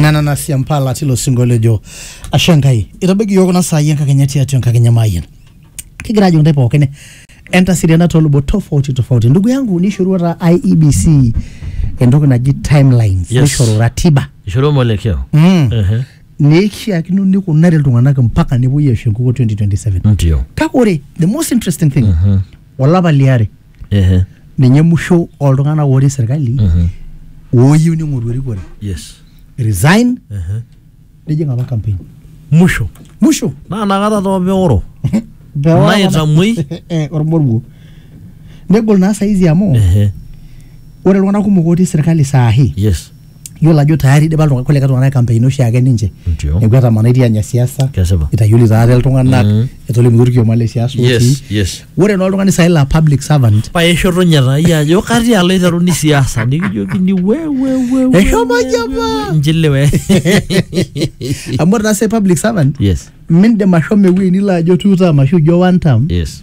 nana siampala tilo singo lejo ashe nkai itabaiki yiok kuna saai enkakenya tiatua enkakenya maayian kigira ajo ntae pookin entasiriana toolubot tofauti tofauti ndugu yangu nishorua taa IEBC entoki naji timelines Yes. nishoru ratiba ishoro mwelekeo mm. Ehe. neishiakino nikunari iltung'anak mpaka nepuoi aisho enkukuo 2027 ndio kake ore the most interesting thing olapa liare Ehe. ninye musho oltung'anak otii serkali Mhm. ooyieu ning'oru erikore Yes. resign Ehe. nijing apa campaign Musho. musho Naa nakata too peoro. Naitamoi. Eh, ormoruo negol naa saizi amu Ehe. ore iltung'anak kumok otii serkali saahi Yes. yiolo ajo tayari idipa iltung'anak kulikae tung'anak kampeini oshiake ninche Ndio. neeku etamanaitie anya siasa Kesipa. itayioli taate iltung'anak Mm. etolimutuo orkioma le siasa otii yes yes ore naa oltung'ani saai laa public servant pae ishotonye taa iyie ajo katii alo aiteruni siasa nikijokini wewewe Eshomo aji apa. njilewe amu ore naa sai public servant yes mindim ashomo ewueji nilo ajo two term ashu ijo one term yes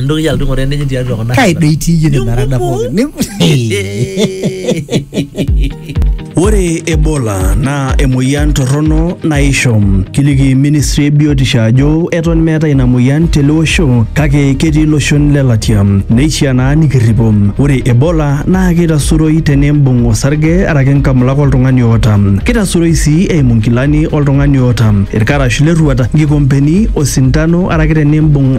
Ntoki alotu ng'oru enenye tiatua kuna. kai doi itii iyie nena rada pookin Ni- Ore Ebola naa emoyian torrono naisho. Kiliki ministry e biotisho ajo eton meetae ina moyian tele osho kake ketii iloshon le latia. Neishiaa naa nikirripo. Ore Ebola naa keitasuroi tenimbung osarge araki nkamulak oltung'ani oota. Keitasuroi sii eimu nkilani oltung'ani oota, irkarash lerruat, nkikompeni, osintano araki tenimbung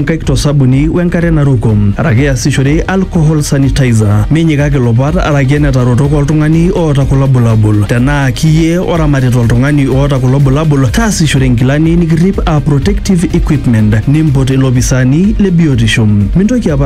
nkaik to sabuni we nkare naruko araki easishore alcohol sanitizer. Minyikaki ilopat araki enetarotok oltung'ani oota kulo bulabul. Tenaa kiyie oramatita oltung'ani oota kulo bulabul, taasishore inkilani nikirrip aa protective equipment. Nimpot ilopisaani le biotisho. Mintoki aparan.